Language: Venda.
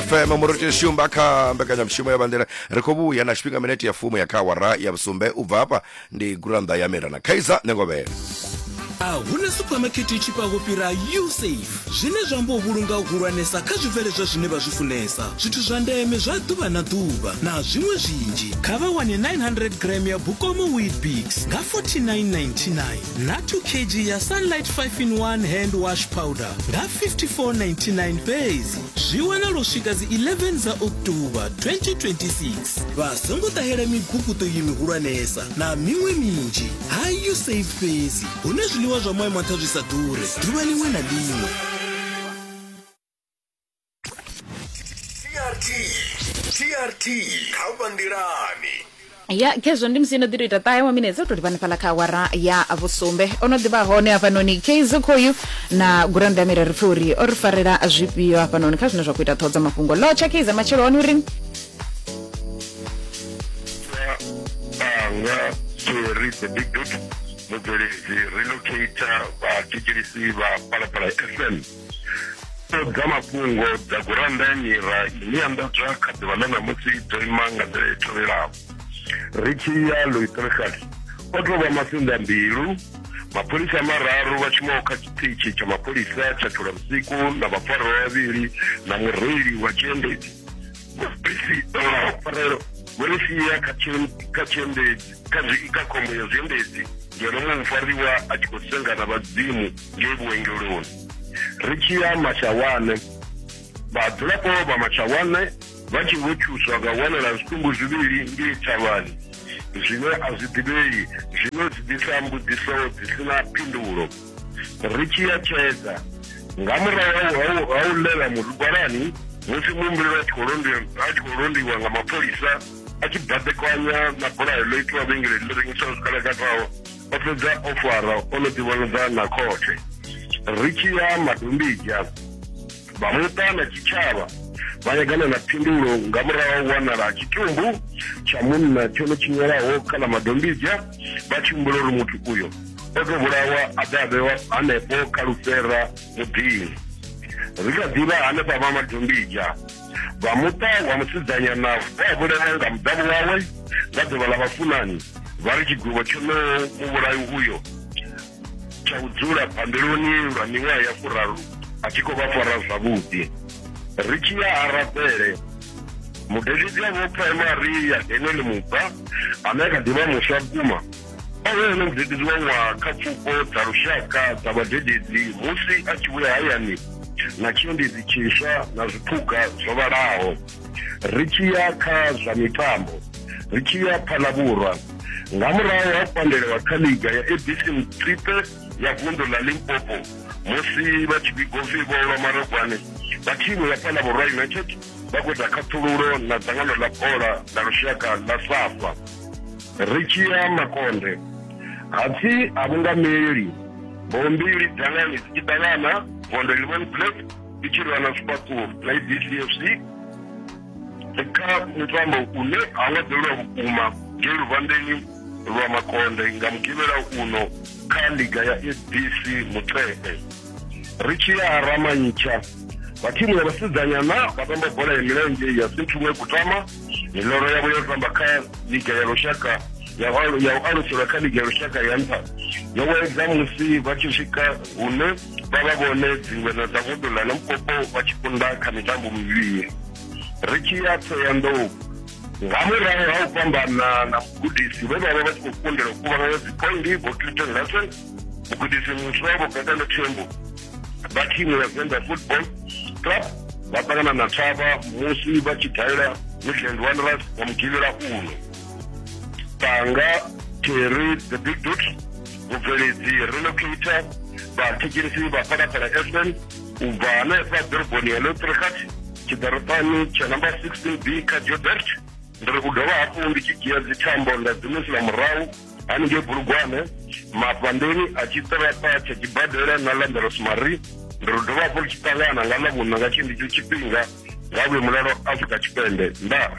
fm murotsheni shumba kha mbekanyamushumo ya bandela ri khou vhuya na tshifhinga minete ya fumo ya kha awara ya vhusumbe u bva hafha ndi gurannḓa ya mira na khaiza nengovhele a hu na suphamakhethe i tshifhaho fhira usafe zwine zwa amba u vhulunga u hulwanesa kha zwibveledzwa zwine vha zwi funesa zwithu zwa ndeme zwa ḓuvha na ḓuvha na zwiṅwe zwinzhi kha vha wane 900 gram ya bukomo weetbix nga 4999 na 2 kg ya sunlight 5 in 1 hand wash powder nga 5499 fhedzi zwi wanala u swika dzi 11 dza october 2026 vha songo ṱahela miguguṱo iyi mihulwanesa na miṅwe minzhi ha usaid fhedzi hune zwiḽiwa zwa moya mantha zwi sa ḓure ḓuvha liṅwe na liṅwe trt trt kha vha nḓilani ya khezwo ndi musi no ḓi to ita ṱahe wa minetse u to livha hanefhaḽa kha awara ya vhusumbe o no ḓivha hone hafhanoni kz khoyu na gurannda mira ri pfhe uri o ri farela zwifhio hafhanoni kha zwine zwa khou ita ṱhoho dza mafhungo lotsha kz matshelo one uri anga seri the big dot mubveledzi relocator vhatshitshilisi vha palapala fm dza mafhungo dza gurannda ya mira ine ya nḓadzwa kha ḓuvha ḽa ṋamusi dzo ima nga nḓila i tevhelaho ri tshi ya loitricas o tou vha masinḓa mbilu mapholisa mararu vha shumaho kha tshiṱitshi tsha mapholisa tsha thulamsiku na vhafarwa vhavhili na mureili wa tshiendedzi mabisi farelo vho ri sia kha tshiendedzi kha khombo ya zwiendedzi ngeno muṅwe mufariwa a tshi khou senga na vhadzimu ngei vhuengeloni ri tshi ya mashawane vhadzulapo vha mashawane vha tshi vho thuswa nga u wanela zwitumbu zwivhili ngei thavhani zwine a zwi ḓivhei zwino zwi ḓisa mbudziso dzi si na phindulo ri tshi ya tshedza nga murahu ha u ḽela murigwalani musi muhumbuleli a tshi khou londiwa a tshi khou londiwa nga mapholisa a tshi baḓekanya na bulayo ḽo itiwa vhengeleni ḽi rengisaho zwikalakataho o fhedza o fara o no ḓivhonadza na khothe ri tshi ya madombija vha muṱa na tshitshavha vha yagana na phindulo nga murahu ha u wanala tshitumbu tsha munna tshone tshinyelaho kha ḽa madombidzha vha tshi humbula uri muthu uyo o tou vhulawa a ḓe a vhewa hanefho kha lufhera muḓini ri kha ḓivha hanefha vha madombidzha vha muṱa wa musidzanyana vha a vhulawa nga muḓavho wawe nga ḓuvha ḽa vhafunani vha ri tshigwevho tshonoho muvhulayi uyo tsha u dzula bambeloni lwa miṅwaha ya furaru a tshi khou vha fara zwavhuḓi ri tshi ya arabele mudededzi a vho primary ya daniel mubva ane a kha ḓivha muswa vhukuma o vhe ene mudededzi wa ṅwaha kha pfuko dza lushaka dza vhadededzi musi a tshi vhuya hayani na tshiendedzi tshiswa na zwiphuga zwo vhalaho ri tshi ya kha zwa mitambo ri tshi ya kha ḽa vhurwa nga murahu ha pandelewa kha liga ya abc mtripe ya vundu ḽa limpopo musi vha tshi vhigo pfi vho lwa marogwane vha thimu ya fhala vhurwa united vha khou ita khaṱhululo na dzangano ḽa bola ḽa lushaka ḽa safa ri tshi ya makonde hapfi ha vhungameli bombili dangani dzi tshi ṱangana gondo ḽivhon black ndi tshi lwa na zwifhaṱuwo na ibdfc kha mutambo une ha nga ḓelwa vhukuma nge luvhandeni lwa makonde nga mugivhela uno kha liga ya fbc mutshepe ri tshi ya ramantsha vha thimu ya vhasidzanyana vha tamba bola ya milenzhe ya sinthumwe kutama miloro yavho yo tamba kha liga ya lushaka ya u aluselwa kha liga ya lushaka ya nṱha yo wedza musi vha tshi swika hune vha vha vhone dzingweṋa dza vundu ḽa limpopo vha tshi kunda kha mitambo mivhili ri tshi ya thoyandou nga murahu ha u fhambana na mugudisi vhe vha vha vha tshi khou kundela u kuvhanganya dziphoindi vho cliton larson mugudisi muswa vho gatano thembo vha thimu ya venda football club vha ṱangana na thavha musi vha tshi dalela midland wanderers nga mugivhela uno tanga terry the big dot vhubveledzi relocator vhathetshelesi vha phalaphala fm u bva hanefha ḓoroboni ya lotrikat tshiḓaropani tsha number 16 b kha jobert ndi ri u dovha hafhu ndi tshi dzhia dzithambo nda dzimusula murahu haningei bulugwane mafhandeni a tshiṱaraṱa tsha tshibadela na landeros mari ndi ri dovha hafhu ri tshi ṱangana nga ḽa vhuna nga tshendicho tshifhinga nga vhuye mulalo afrika tshipembe ndaa